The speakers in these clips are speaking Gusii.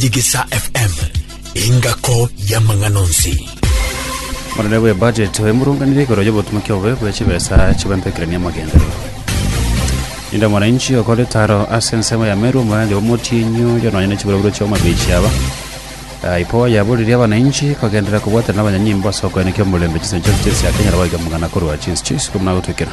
Digisa FM, engako y'amang'ana onsi. Omorere bw'ebudget oyo moronganire igoro y'obotumoki obobe bwe chibesa chibempekerania amagenderero. Ninde mwananchi okore taro ase ensemo ya Meru omoranja bw'omotienyi oyo nonya ne chiburoburo chi'omobichi aba. Ah, Ipo yaboririe abananchi kogenderera kobwatana n'abanyanyimbo ase okoenekia omorembe chinsa chionsi chinsi akenyara goika amang'ana korwa chinsi chionsi iko buna agotwekera.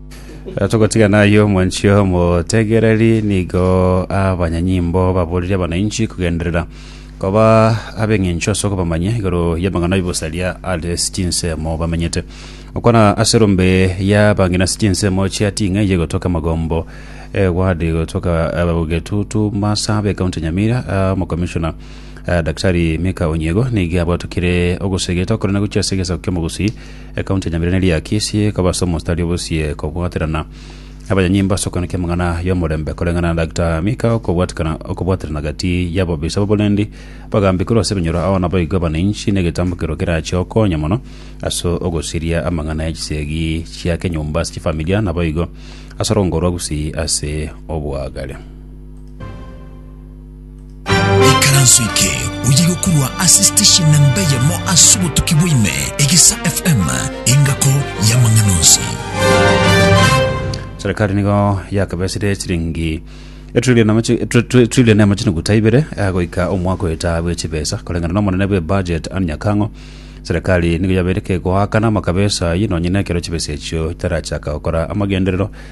Eh, Togotigana ayio mwanchi omotegereri nigo abanyanyimbo baboririe abanainchi kugenderera koba ab'eng'encho ase okobamanya igoro y'amang'ana y'obosaria are chinsemo bamenyete okwana ase rombe ya bang'ina ase chinsemo chia ting'ai yegotoka magombo egwadi gotoka abagetutu masa b'ekaunti ya nyamira ah, omokomishona ah, daktari mika onyego nigo abwatukire ogosegeta okorana gochia ase egesaku ki'omogusi Ekaunti ya Nyamireneri ya Kisii ekaba ase omostari obosie kobwaterana abanyanyimbo ase okwana ki'amang'ana y'omorembe koreng'ana na Dagita Mika okobwatikana okobwaterana gati y'abobisa b'oborendi bagambi korwa ase ebinyoro ao naboigo abananchi negetambo kerwa kerache okonya mono ase ogosiria amang'ana ya chisegi chia kenyomba ase chifamilia naboigo ase orongoro rwa Gusii ase obwagare. Ikaranso eke oye gokurwa ase station na mbeyemo ase obotuki bwaime, Egesa FM, engako y'amang'ana onsi. serikali nigo yakabesire chiringi etrilion amachi- etri- etri- etrilion na amachine guta ibere eh, goika omwaka oeta bwe chibesa koreng'ana n'omonene bwe budget Anne Nyakang'o serikali nigo yabeire kegoakana amakabesa aye nonye nekero chibesa echio chitarachaka gokora amagenderero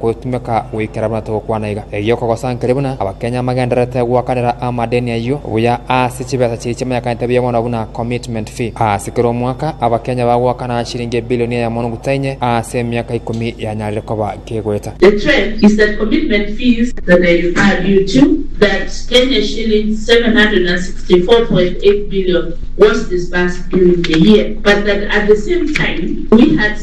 Gotumeka goikera buna togokwana iga. Erio kogosankeria buna Abakenya amagendererete goakanera amadeni ayio buya ase chibesa chiria chimanyekanete buya mono buna commitment fee. Ase kera omwaka, Abakenya bagoakana chiringi ebilioni eyemo na omogocha inye ase emiaka ikomi yanyarire koba kegoeta. The trend is that commitment fees that they require due to that Kenya shillings 764.8 billion was disbursed during the year but that at the same time we had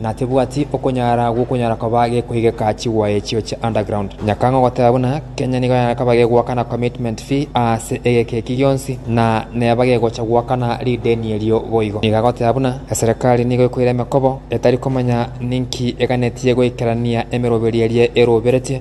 na tebwati okonyara gw'okonyara koba gekoigeka chigwa echio chia underground. Nyakang'o goteba buna Kenya nigo yakaba gegoakana commitment fee aase egeka eki gionsi na neba gegocha goakana rideni erio boigo. Nigo agoteba buna eserekari nigo ekoira emekobo etari komanya ninki eganetie goikerania emeroberi eria eroberetie.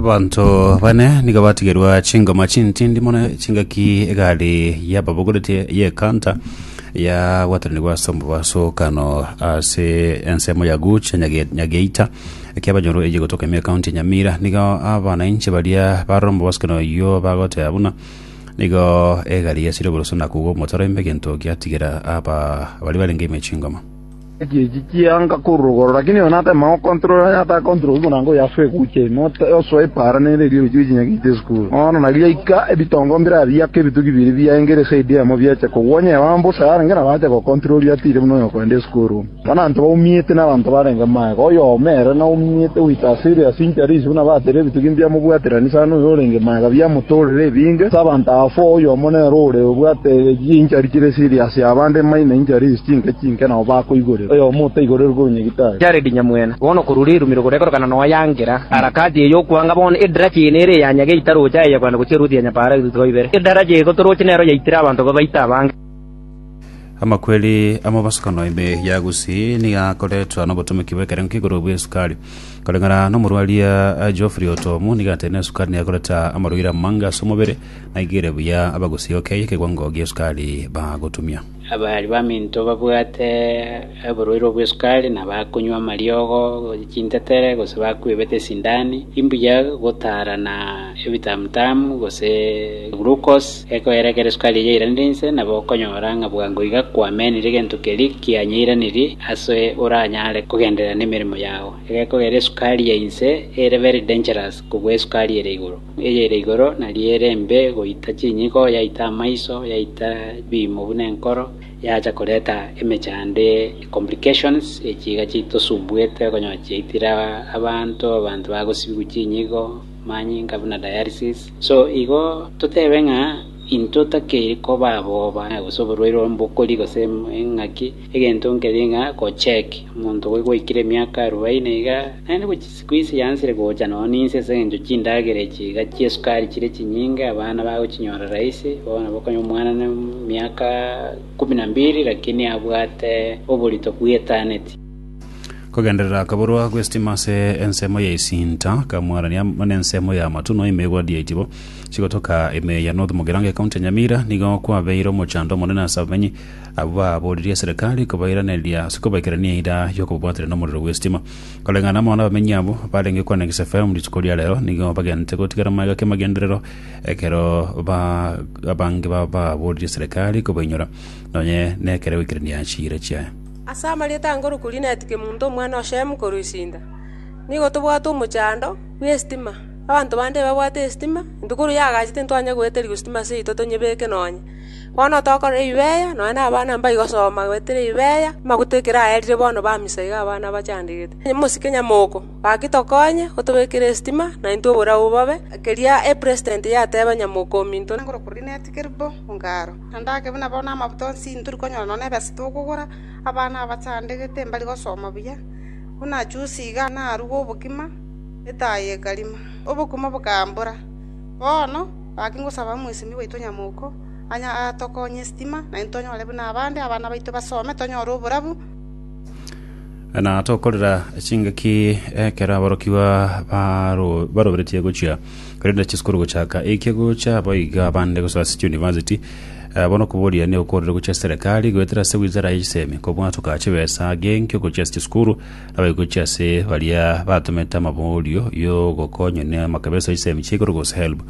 Abanto bane nigo batigerwa chingoma chintindi mono chingaki egari y'ababogoretie y'ekanta yagwataranigwa ase omobaso o Kano ase ensemo ya Guch Nyage- Nyageita ekia abanyoro eyio egotoka Emia County Nyamira nigo abanainche baria barora omobaso keno oyio bagoteba buna nigo egari yasire oboroso na kogwa omotaro ime egento giatigera aba baria barenge ime chingoma. Ekiegiki kianga kororogoro, lakini oyo natema gokontorora aye atakontorori buna ngo yaswe eguche ime, osoe epaara nere erio ri'ochia gochinya giita esukuru. Bono narigaika ebitongo mbiraya biake ebitugi bibiri biaengere esaidi eyemo biache kogwa onye Yoabu ase arenge nabo ache gokontorori atiire buna oyokogenda esukuru. Bono abanto baumiete nabanto barenge magega, oyomo ere naumiete goita ase ere ase inchera ise buna batere ebitugi mbiamobwaterani sana oyo orenge magega biamotorera ebinge ase abanto abafo, oyomo nere ore obwate chinchari chire siri ase abande maina inchera ise chinke chinke. Inki nao bakoigorerwa? Oyomo otaigoreirwe oronyegita aye. Jaredi nyamwene, bono korwa rirumiro gorekorokana noa yangera, harakati eye y'okwanga bono edaracha eye nere eya nyage itaroche aye yagwena gochia eruti ya nyapaara etutuko ibere. Edaracha eye gotoroche nero yaitire abanto babaite abange. Amakweri amobosokano ime ya Gusii nigo akoretwa nobotomeki bw'ekerengo k'igoro bw'esukari. Koreng'ana nomorwaria Geoffrey Otomu nigo ateneire esukari nigo ekoreta amarwaire amange as'omobere, naigere buya Abagusii okay ekewango gi'esukari bagotumia. Abari baminto babwate oborwaire obw'esukari nabakonywa amariogo chintetere gose bakwebete esindani, imbuya gotaarana ebitamutamu gose glucose ekoera ekero esukari eyio yairanire inse, nabo okonyora ng'a bwango iga kwamenire egento keria kianyeiranirie ase oranyare kogenderera nemeremo yao. Egekogera esukari ya inse ere very dangerous kobua esukari ere igoro. Eyere igoro nario ere embe goita chinyiko, yaita amaiso, yaita ebiimo buna enkoro, yacha koreta emechando, complications, echi iga chitosumbuete okonyora chiaitire abanto, abanto bagosibigwa chinyiko, manyinga buna dialysis. So igo totebe ng'a intwe totakeire koba aboba gose oborwaire ore mbokori gose eng'aki, egento nkeria ng'a go check omonto gwe gwaikire emiaka arubaini iga, naende gochi. Sikuisi yansire gocha nonya ninse ase engencho chindagera echi iga chi'esukari chire chinyinge, abana bagochinyora rahisi, bono bokonya omwana ne miaka ikomi na mbiri lakini abwate oborito bwa etaneti. Kogenderera koborwa gw'esitima ase ensemo ya esinta, Kamwarania na ensemo ya Amatuno ime igoro ri'eitibo chigotoka ime ya North Mugirango ekaunti ya Nyamira nigo kwabeire omochando omonene ase abamenyi abwo baboririe eserekari kobairaneria ase kobaikera neira y'okobabwatera nomorero bw'esitima. Koreng'ana amo n'abamenyi abwo barenge kwana Gesafaelimu rituko ria reero, nigo bagenete gotigara magega ki'amagenderero, ekero ba- abange bababoorire eserekari kobainyora, nonye nekere goikerania chiira chiaye. Ase amarieta a Nkoro Kurineti Kemunto omwana o Shemu korwa Isinda, nigo tobwate omochando bw'esitima. Abanto bande ebabwate esitima, intwe korwa yagachete intwanye goeterigwa sitima seito tonyebeke nonya. Bono tokorora Ibeeya, nonya nabana mbaigosoma goetera Ibeeya, amaguta ekero aerire bono ba misa iga abana bachandegete. Mosike nyamoko, gaki tokonye gotobekera esitima, naintwe oborabu bobe. Keria President yateba nyamoko ominto nagore koria netigere bo ongaro, na ndake buna bono amabuta onsi ntori konyora nonya nebesa tokogora, abana abachandegete mbari gosoma buya. Buna juzi iga narugwa obokima, etaai ekarima, obokima bokambora. Bono. Gaki ngosaba omosemi bwaito nyamoko atokonye esitima, naintwe tonyore buna abande, abana baito basome, tonyore oborabu. Na tokorera chingaki ekero aborokigwa baro- baroberetie gochia korenda chisukuru gochaka eike gocha boigo abande gosoa ase chiuniversity Eh, bono okoboria neokorire gochia ase serekari goetera ase wizara ya chisemi kobwatoka chibesa genkio gochia ase chisukuru Abagochi ase baria batomete amaborio y'ogokonya n'amakabesa y'chisemi chia igoro gose helb.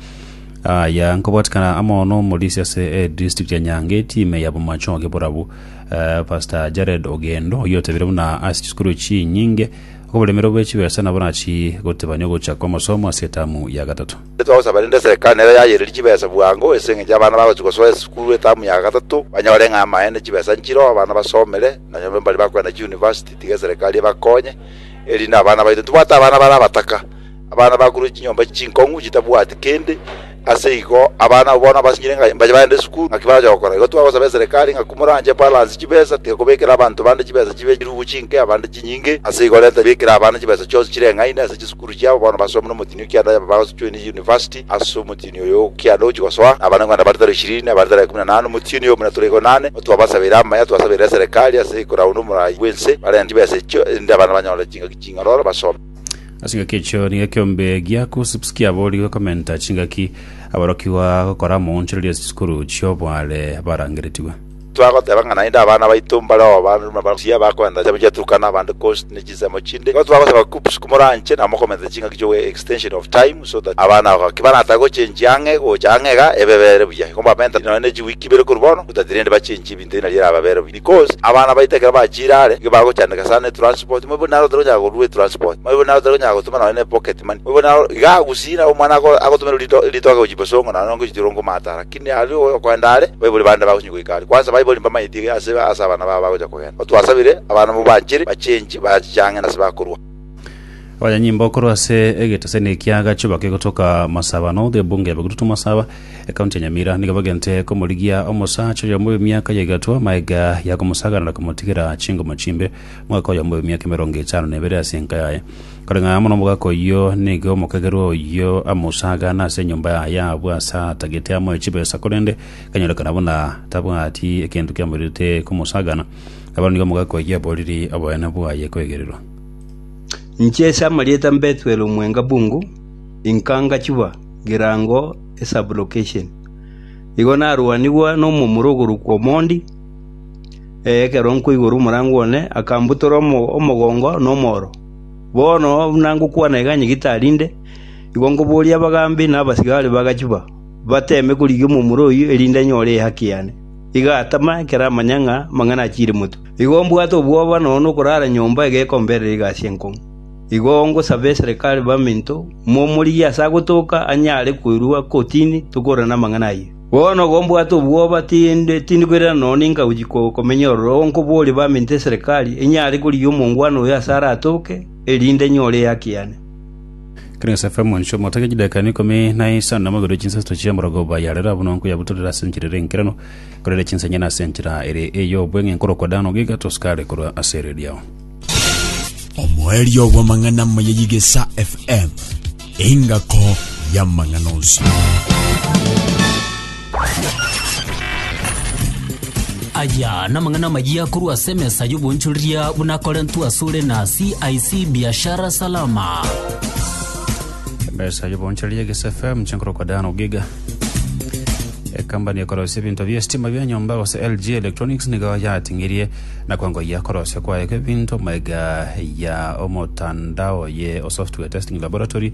Aya nkobwatikana amo n'omorisia ase edistrict ya Nyange etime ya Bomacho oge borabu eh, Pastor Jared Ogendo oyio otebire buna ase chisukuru chinyinge okoboremero bwe chibesa nabo nachi gotebania ogocha kwa amasomo ase etamu ya gatato. Twagosaba rende serikali nero yayererie chibesa bwango ase eng'encho abana bagochia gosoa esukuru etamu ya gatato banyore ng'a amaene chibesa nchire oo abana basomere nonya mbari bakogenda chiuniversity. Tiga eserekari ebakonye, erinde abana baito ntibwate abana bare abataka, abana bakorwa chinyomba chinkong'u chitabwati kende. Ase igo abana abwo bono abasinyire ng'a mbache bagende esukuru, naki barache gokora? Igo twagosaba eserekari ng'a komoranche balance chibesa, tiga kobekera abanto bande chibesa chibe chirubu chinke, abande chinyinge. Ase igo renta bikera abana chibesa chionsi chireng'aine ase chisukuru chiabo, bono basome nomotinio kianda yabo bagosojoine university. Ase omotienyi oyo ogokianda ogochia gosoa, Abanyarwanda bare tari ishirini na bare tari ikomi na nane, omotienyi oyo buna tore igo inane, otwabasabeire amaya, twasabeire eserekari ase koraunda omorai bw'ense, barente chibesa echio, erinde abana banyore chingaki ching'ororo basome. Ase engaki echio nigo ekeombe gia Kousipski aboorigwe gokomenta chingaki aborokigwa gokora moonchoreria chisukuru chi'obware barangeretigwe. Twagoteba ng'a naende abana baito mbare obaandu na barusia abakoenta chinsemo chia Turkana abande coast ne chinsemo chinde. Igo twagosaba KUPPS komoranche na mokomentera ching'aki chi'ogoika extension of time so that abana aba gaki barata gochenjia ang'e gocha ang'e iga ebebere buya. Igo mbamentere nonya ne chiweek ibere korwa bono so that rende bachenjie ebinto ng'a ri'erababere buya because abana baito ekero bachiire are nigo bagochandeka sana etransport moibo naro otari konyara korua etransport moibo naro otari konyara gotoma nonya nepocket money moibo naro igaa gusii naro omwana ago agotomerwe rito ritoke gochia bosongo naende nonye gochia ore ngomaata ara Niaria oyokoenda are, baibori bande bagochengi goika are. Kwansa baibori mbamaeti iga ase ase abana babo bagocha kogenda. Otwasabire, abana mobaachere, bachengi, bachang'e nase bakorua. Abanyanyimbo korwa ase egeteseni ekia Gachuba kegotoka Masaba, North, Ebunga ebe Gututu Masaba, Ekaunti ya Nyamira, nigo bagente komorigia omosacha oyomo bw'emiaka ya egatwa, maega ya komosaganera komotigera chingoma chimbe. Omwaka oyomo bwe emiaka emerongo etano na ebere ase enka yaye. Koreng'a amo nomogaka oyio nigo omokagerwa oyio amosaagane ase enyomba yaye abwo ase atagete amoe chibesa, korende kanyorekana buna tabwati egento kiamoirete komosaagana, nabo nigo omogaka oyio aboriri oboene bwaye kwegererwa. Inche ase amarieta Mbethuel Omwenga Bungu, inka ngachiba Girango eSub-location. Igo narwanigwa nomomura ogorokwa Omondi. Ee, ekero nkoigora omorango one, akambutora omogongo na omoro. Bono buna ngokwana iga nyigitari inde, igo nkoboria abagambi na abasigari b'agachuba, bateeme korigia omomura oyio, erinde nyore ehaki yane. Iga atama, ekero amanya ng'a amang'ana achiire motwe. Igo mbwate obwoba nono nokorara nyomba egekomberera egasi enkong'u. Igo ngosabe eserekari baminto, momorigie ase agotoka anyare koirwa kotini tokore namang'ana ayio. Bono gombwate obwoba, tindi koirana nonya ninka gochia komenya ororo nkoborie baminto eserekari enyare korigia omongwana oyo ase aratoke, erinde nyore ehaki yane. Clarence FM, Inche omotake chidakika ime ikomi na isano namogerwe chinsasto chia omorogoba ya rero abwo nonkoyabutorera ase enchera ere enkeranu, korere chinsanyene ase enchera ere ey'obweng'e nkorokwa Dan Ogiga, tosukare korwa ase ere riao. Omoerio bw'amang'ana amaya y'Igesa FM, engako y'amang'ana onsi. aya namang'ana amaya korwa ase emesa y'obonchoreria buna korentwe asore na cic biashara salama emesa y'obonchoreria egesa fm chinkoro kwa dan ogiga ekambani ekorosia ebinto bia estima bia nyomba gose lg electronics nigo yating'irie Na kwengoyia korosia kwaye kw'ebinto maiga ya omotandao ye Software Testing Laboratory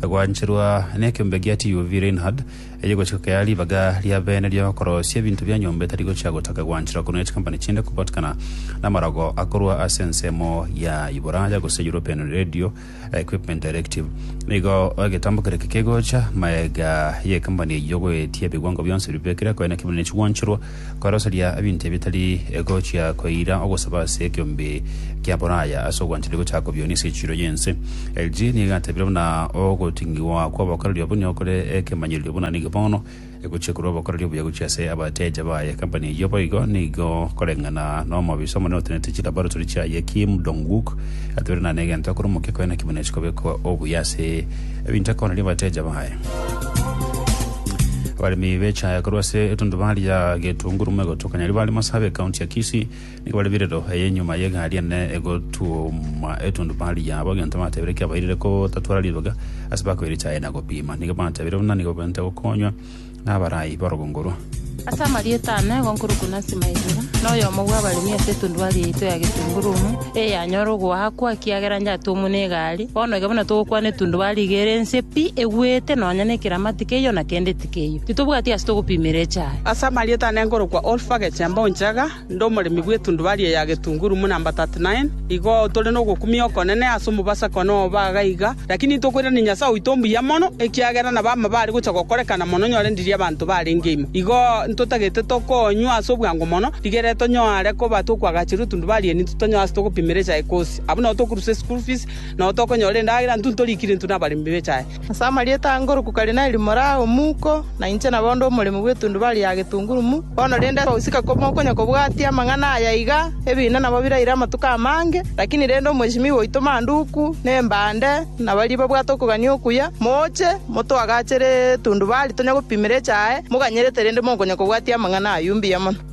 gwancherwa nekeombe gia TUV Reinhard, eye gochika kea ribaga ria bene ri'okorosia ebinto bia nyomba etari gochia gotaka gwancherwa korwa ne chikampani chinde kobatikana namarogo akorwa ase ensemo ya Iboraya gose European Radio equipment directive, nigo egetambo keria kekegocha, maega y'ekambani eyio goetia ebiwango bionsi bibekire koe naki bire nechigwancherwa koeroseria ebinto ebitari egochia koira ogosaba ase ekeombe kia Boraya ase ogwanchani gochaka kobio nise echiro y'ense. LG nigo egatebire buna ogoting'igwa kw'obokoreri obwo nigo kore ekemanyererio buna nigo bono Egochia korwa obokoreri obuya gochia ase abateja baye ekampani eyio boigo nigo koreng'ana nomobisa omonene otenete chilaboratory chiaye Kim Dong-wook atebire nane egento akore omokia koena kimo ne chikobekwa obuya ase ebinto akoneria abateja baye. Abaremi b'echae korwa ase etundubaari ya Getunguru Moegoto Kanyari bare Masabe, County ya Kisii, Nigo bare birero eye nyuma y'egari ene egotuoma etundubari yabo, egento batebire kiabairire kotatwara riroga ase bakoire echaye na gopima. Nigo batebire buna nigo baente gokonywa n'abarai b'orogongo orwo. Ase amarieta ane, egonkoro Kunasi Maigura, noyomo bw'abaremi ase etundubari yaito ya Getungurumu, eyanyora ogoakwa ekiagera yatuomwa n'egari. Bono iga buna togokwana etundubari iga ere ense pi, egwete, nonya nekeramati keyio na kende tikeyio. Titobwati ase togopimera echaye. Ase amarieta ane nkorokwa Olfa, Gechemba, Onchaga. Inde omoremi bw'etundu baria ya getunguru buna namba 39. Igo tore nogokumia okonene ase omobasa kona obaga iga, lakini ntokoirania Nyasae oito mbuya mono, ekiagera nabo amabare gocha gokorekana mono nyorendiri abanto barenge imo. Igo ntotagete tokonywa ase obwango mono, rigere tonyare koba tokwagachera etundu baria ninto tonyoe ase togopimera echae kosi. Abwo nao tokorusia eschool fees, nao tokonyora endagera, ntunto rikire intwe nabaremi bechae. Ase amarieta a ngoroku Karineli more aye omuko, na inche nabo onde omoremi bw'etundubari ya getungurumu. Bono rende gosika komokonya kobwatia amang'ana aya iga, ebiina nabo biraire amatuko amange, lakini rende omwesimigwa oito Manduku, na Embande, na baria babwate okogania okuya, moche, motoagachere etundubari, tonya gopimera echae, moganyerete rende mokonya kobwatia amang'ana ayio mbuya mono.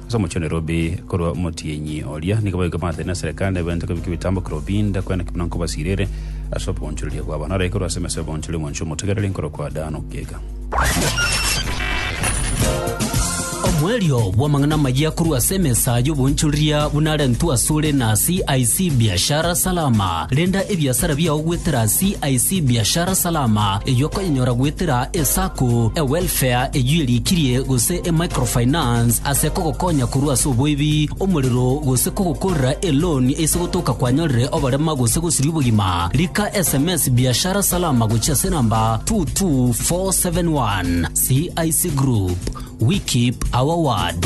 Ase omochie o Nairobi korwa omotienyi oria nigo baigwe baatene na serikali neberente kobeka ebitambo Kirobinda kwenda kebuna nkobasirere ase oboonchoreria bwabo naro aikorwe ase emesa y'oboonchori omonchio omotegereri nkorokwa Dan Okiega. Omoerio bw'amang'ana amayia korwa ase emesa y'oboonchoreria buna arentwe asore na CIC Biashara Salama. Renda ebiasara biao goetera CIC Biashara Salama, eyio okoyenyora goetera eSacco, eWelfare eyio erikirie, gose eMicrofinance ase kogokonya korwa ase oboibi, omorero, gose kogokorera eloan ase gotoka kwanyorire oborema gose gosiria obogima. Rika sms Biashara Salama gochia ase enamba 22471. CIC Group, we keep our word.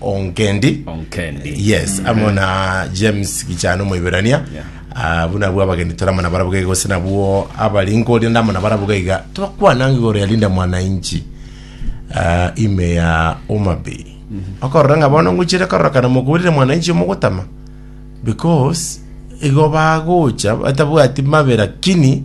onkendi onkendi yes mm. amo na james gichano moiberania yeah. Ah, buna bwa abageni toramana barabuga iga gose nabwo abari nkoria ndamana barabuga iga twakwananga igoro ya linda mwananchi uh, ime ya omabe mm -hmm. okorora ng'a bono ngochire kororokana mokurire mwananchi omogotama because igo bagocha batabwati mabe lakini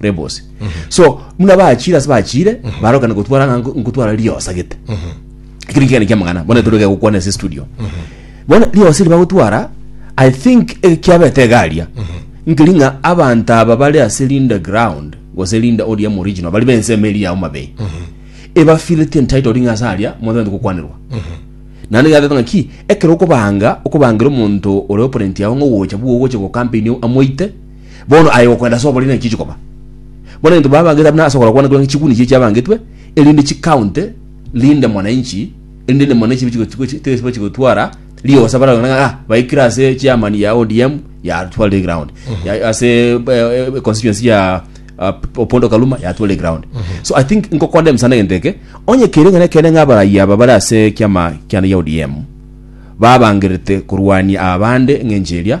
rebose so muna bachire ase bachire barokana gotwara ng'a nko- nkotwara riosa gete ekero nkegane kiamang'ana bono toroke gokwana ase studio bono riosa eri bagotwara i think eh, kiabete egaria nkeri ng'a abanto aba bare ase linda ground gose linda odium original bari bensemo eri ya homabay ebafileti entitled ng'a ase aria monto tari gokwanirwa naende yateba ng'aki ekero okobanga okobangera omonto ore opponent yago ng'ogocha bwogocha gokampeinio amoite Bono aye gokwenda ase oboria naki chikoba. Bono egento babangete buna ase ogoro kwane korenge chikuni chie chiabangetwe, erinde chikaunte rinde mwananchi, erinde rinde mwananchi tibachi gotwara riosa bara ng'a ng'a baikire ase chairman ya ODM yatwarire ground. Ya- Ase eh, eh, constituency ya ah, Opondo Kaluma yatwarire ground. So I think nkokonde msana egento eke, onye kere ng'ana kende ng'a abarai aba bare ase kiama kiane gia ODM babangerete korwania abande ng'encho eria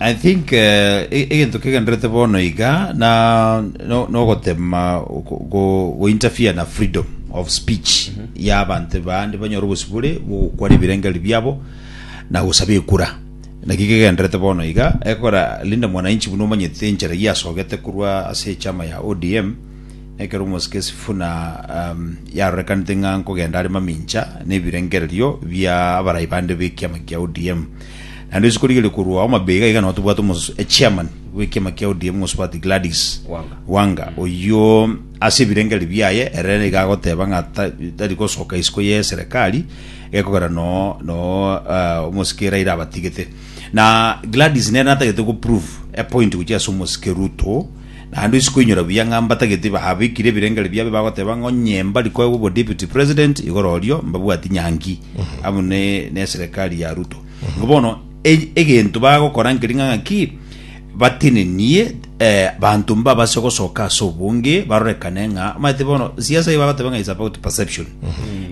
I think egento kegenderete bono iga na nogotema go interfere na freedom of speech ya abanto bande banyore obosibore bw'ogokwana ebirengererio biabo na gosaba ekura. Naki kegenderete bono iga ekora Linda Mwananchi buna omanyete enchera eyio asogete korwa ase echama ya ODM ekero omosike Sifuna yarorekanete ng'a nkogenda are mamincha nebirengererio bia abarai bande b'ekiama kia ODM. Naende rituko riria rikorwa omabega iga nabo tobwate omos- eh, chairman bw'ekiama kia ODM omosubati Gladys Wanga. Wanga, oyio ase ebirengererio biaye ere nigo agoteba ng'a ta- tari gosoka isiko ye serikali egekogera no no eh, omosike Raila abatigete. Na Gladys nere natagete go prove a point gochia ase omosike Ruto naende ase koinyora buya ng'a mbatagete babekire ebirengererio biabo bagoteba ng'a onye mbari koegwa obo deputy president igoro orio mbabwati nyangi amo ne ne serikali ya Ruto. Erio bono e- egento bagokora nkeri ng'a ng'aki, batenenie eh, banto mbabase gosoka ase obonge, barorekane ng'a omanyete bono siasa eye bagoteba ng'a is about perception.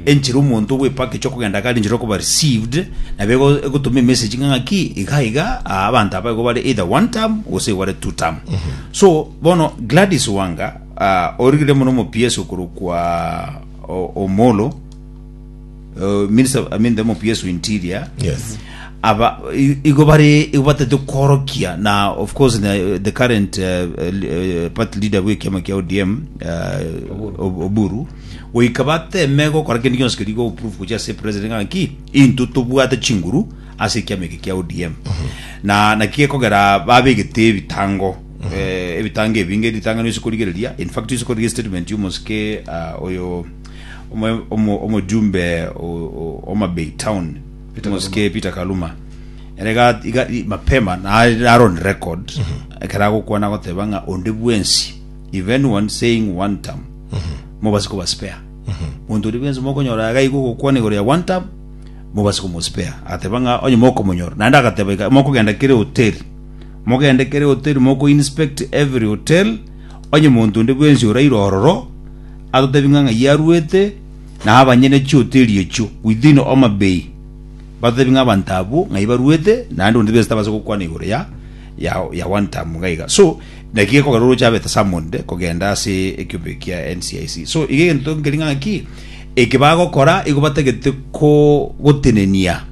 Enchera omonto ogwepaka echi okogenda gari enchera okoba received, nabo ego- egotoma emessage ng'a ng'aki, iga iga, ah, abanto aba igo bare either one term, gose igo bare two term. So, bono Gladys Wanga, ah, origire mono omopiesi okorokwa o- Omolo, Uh, minister, I mean the MPS interior. Yes. Aba i- igo bari igo batete korokia na of course na, uh, the current uh, uh, party leader bwe kiama kia ODM uh, Ob- Oburu goika bateme gokora kindi gionsi kiri go proof kucha se president ngaki into tobwate chinguru ase kiama eke kia ODM na na kigekogera babegete ebitango eh, ebitango ebinge ritangano isikorigereria in fact isikorigeria statement yomosike uh, oyo Omojumbe o Homa Bay Town, omosike Peter Kaluma, ere iga mapema naro on record mhm. ekero agokwana agoteba ng'a onde bwensi if anyone saying one term mhm. mobasi kobaspare mhm. monto ori bwensi mokonyora iga igo ogokwana igoro ya one term mobasi komospare agateba ng'a onye mokomonyora naende agateba iga mokogenda kere hoteli mogende kere hoteli moko inspect every hotel onye monto onde bwensi oraire ororo atotebie ng'a ng'ai aruete, na abanyene chioto eriechio within Homa Bay batotebie ng'a abanto abwo ng'ai baruete, naende onde bwensi tabaasa gokwana igoro ya ya ya one term iga iga. So naki gekogera oroche abete summoned kogenda ase ekiombe eki kia NCIC. So iga egento nkeria ng'a ng'aki eke bagokora igo batagete ko gotenenia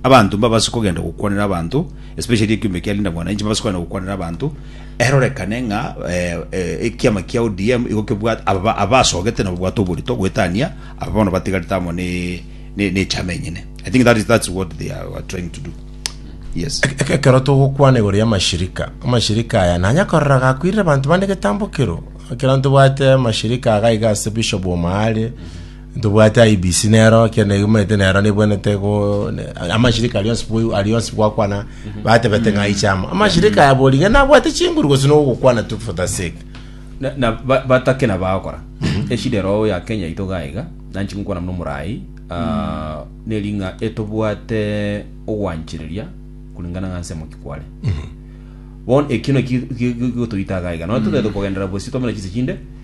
abanto mbabase kogenda gokwanera abanto especially ekiombe kia Linda Mwananchi mbabase kogenda gokwanera abanto Erorekane ng'a ekiama kia ODM igo kebwate aba abasogete na babwate oborito goetania aba bono batigarete amo ne ne ne chama enyene. I think that is that's what they are, are trying to do. Yes. Eke- ekero togokwana igoro ya amashirika amashirika aya nanya korora gakwirire abanto bande getambo kero ekero ntobwate amashirika agaiga ase bishop omwaare Ntobwate IEBC nero ekero negimanyete nero nebwenete go amashirika aria onsi bwe- aria onsi gwakwana batebete ng'a aiche amo amashirika aya bori ng'a nabwate chinguru gose nogokwana tu for the sake Na- na ba- batake na bagokora eshida erogo ya kenya yaito iga iga nanchi gokwana buna omorai ah, neri ng'a etobwate ogwanchereria kulingana ng'a nse moki kware bono ekio naki gi- gi- gigotoita iga iga nonya totagete kogenderera bosio twamanya chinse chinde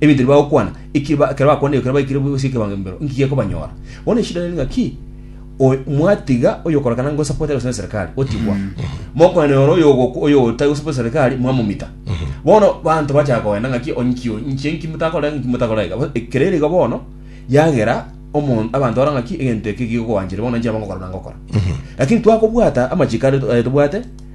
Ebinto ebi bagokwana, eki ba- ekero bakwana eyo, ekero baikire bwebusie ekebango embero, inki gekobanyora? Bono eshida nere ng'aki, oy- mwatiga oyokorokana ng'a osapotete gose neserikali, otigwa. Mokonene ore oyogoku- oyotari gosapota eserikali, mwamomita. Bono banto bachaka kogenda ng'aki, onki oyo, inche inki motakora iga, inki motakora iga. Bo- Ekero ere igo bono, yagera omo- abanto bara ng'aki, egento eke gigokoanchire, bono inche nabo ngokora buna ngokora. Lakini twakobwata amachiko are are tobwate,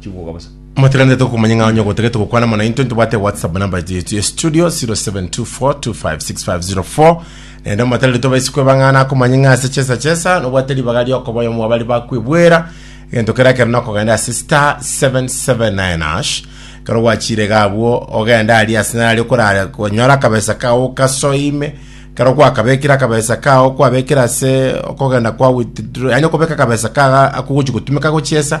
chigwoga bosa. Motiganete tokomanya ng'a onye ogotagete gokwana amo naintwe ntobwate whatsapp namba yetu ya studio 0724256504 naende omotarire tobaisi kwebang'ana akomanya ng'a ase chesa chesa nobwate ribaga riokoba oyomo wabari bakwebwera egento kera kero nokogenda ase star 779 ash kero gwachire gabwo ogenda aria ase nari okorara konyora akabesa kao kasoime kero gwakabekire akabesa kao kwabekire ase okogenda kwa withdraw yani okobeka akabesa kaga akogochi gotumeka gochiesa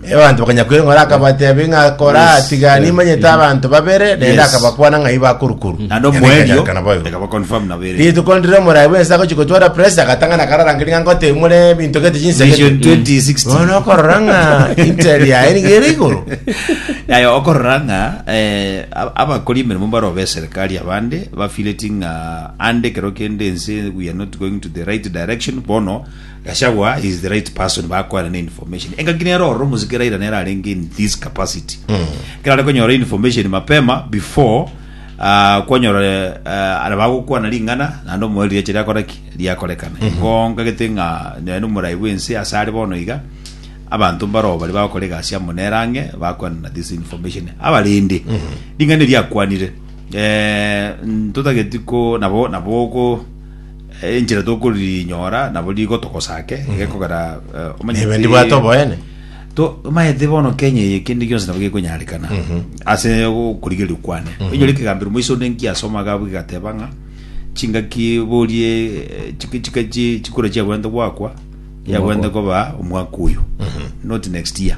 Abanto bakanya kweng'ora, akabatebia ng'a kora Yes, tiga yes. nimanyete abanto babere, naende Yes. akabakwana ng'a iba akorukuru. Naende Yaani omoerio ekanyarekana boigo. ekaba confirm na bere. Rituko ndire omorai bwense agochi gotwara press agatang'ana akararangeri ng'a ngote mure ebinto gete Vision chinsegete. 2060. Bono okorora ng'a intel yaye niga ere igoro. Yaya okorora ng'a eh, ab- abakori emeremo mbare obe serikali abande bafileti ng'a ande kero kende ense we are not going to the right direction bono Gachagua is the right person bakoera ne information engaki nere ororo omosike Raila nere arenge in this capacity ekero are konyora information mapema before ah, kwanyora ah, ara bagokwana ring'ana naende omoeri riache riakora ki riakorekana igo nkagete ng'a nere omorai bw'ense ase are bono iga abanto mbaroo baria bagokora egasi amo nere ang'e bakwanana this information abarende ring'ana eri akwanire eh, ntotageti ko nabo nabo oko Enchera tokorinyora nabo nigo togosake gekogera omanye Nebe ndibwate oboene. Tomaete bono Kenya eye kende gionsi nabo gekonyarekana ase okorigereria kwane. Oinyore ekegambero moiso onde nkiasoma iga abwo egateba ng'a chingaki borie chikura chiagwento gwakwa yagwente koba omwaka oyo not next year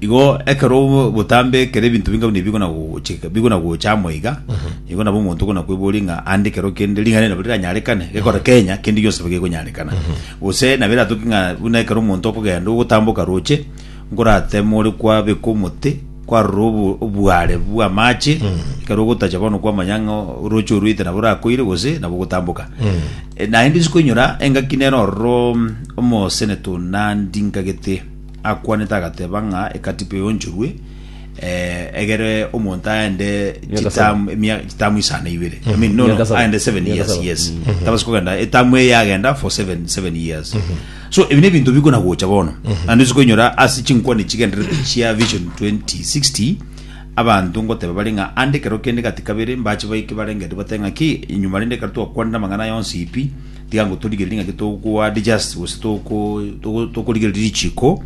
igo ekero obo- botambe kere ebinto binga buna bigona gochika bigona gocha amo iga igo nabo omonto ogona kweboria ng'a ande kero kende ring'ana eri nabo riranyarekane gekora kenya kende gionsi nabo gekonyarekana gose nabo eratoke ng'a buna ekero omonto okogenda ogotamboka roche Nkorateeme ore kwabekwa omote, kwarora obo- obuaare bw'amaache, ekero ogotacha bono kw'amanyang'a orooche orwete nabo orakoire gose nabo ogotamboka. E, Naende isiko inyora engaki nere ororo omoseneta o Nandi nkagete akwanete agateba ng'a ekatiba eonchorwe eh, egere omonto aende Miaka chitamu emia- chitamu isano na ibere I mean, no, Miaka no, saba. aende seven Miaka years saba. yes tabasi kogenda etamu eye yagenda for seven, seven years So ebi nebinto bikonagocha bono naende ase koinyora ase chinkwane chigendererete chia Vision 2060 abanto ngoteba bare ng'a ande ekero kende gati kabere mbache baike barengete bate ng'a ki inyuma rende ekero twakwanire amang'ana aya onsi pi tiga ngo torigererie ng'aki togo adjust gose toko toko- tokorigereria richiko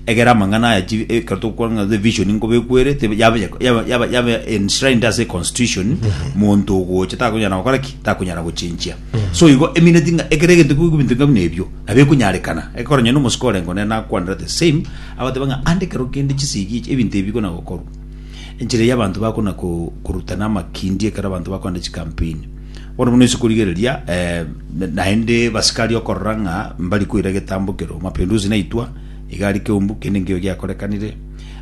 egere amang'ana aya chi ekero tokwana ng'a the vision nkobekwere tebe yaba yaba yaba yaba enshrined ase constitution monto ogocha takonyara gokora ki takonyara gochenchia So igo emineti ng'a ekero egento kigokwa ebinto ngabuna ebio, nabo ekonyarekana. Ekero nonya nomosike orenge one nakwanera the same, agoteba ng'a ande ekero kende chisegi echi, ebinto ebi bikona gokorwa. Enchera eyio abanto bakona ko- korutana amakindi ekero abanto bakogenda chikampeni. Bono buna ase korigereria naende basikari okorora ng'a mbari koira egetambo ekero mapinduzi naitwa, iga aria keumbu kende nkeiyo giakorekanire,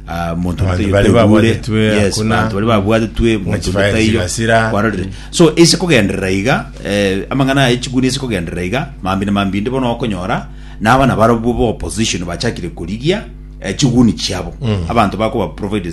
ah, monto Abanto totayo bare toigure. babwatetwe Yes, hakuna. abanto bare babwatetwe monto Mwachifaya totayo chigasira. kwarorire so ase kogenderera iga eh, amang'ana aye chiguni ase kogenderera iga mambi na mambi inde bono okonyora na abana barobwo ba opposition bachakire korigia eh, chiguni chiabo abanto bakoba provided